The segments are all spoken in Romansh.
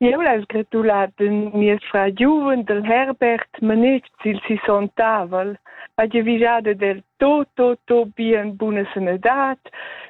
Eu l'ha sgratulat ün miez frar giuven del Herbert manetsch il sisontavel, ha giavüschada del tot, tot, tot bien buna sanadad,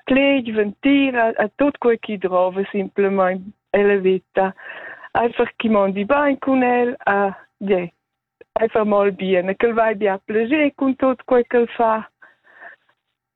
cleg, ventira, a tot quei chi drova simplamaing e la vita. Einfach chi mondi bain cun el, a je, einfach mal bien, e ch'el vai bia plager cun tot quei ch'el fa.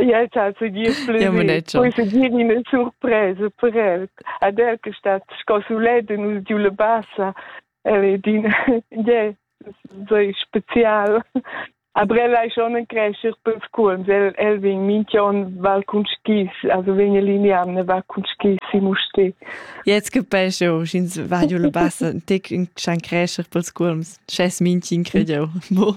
Ja, ça se dit plaisir. Poi se dire une surprise per elle. Ad elle che sta scosuletta nus giu le bassa. Elle è din, yeah, sei spezial. Aber elle è schon ein Crescher per Scuols. Elle, elle vegn minchion val cun skis, also vegn a liniamne va cun skis si musti. Jetzt capesce eu, sch'ins va giu le bassa, tec un chan Crescher per Scuols. Schess minchi incrediau. Mo.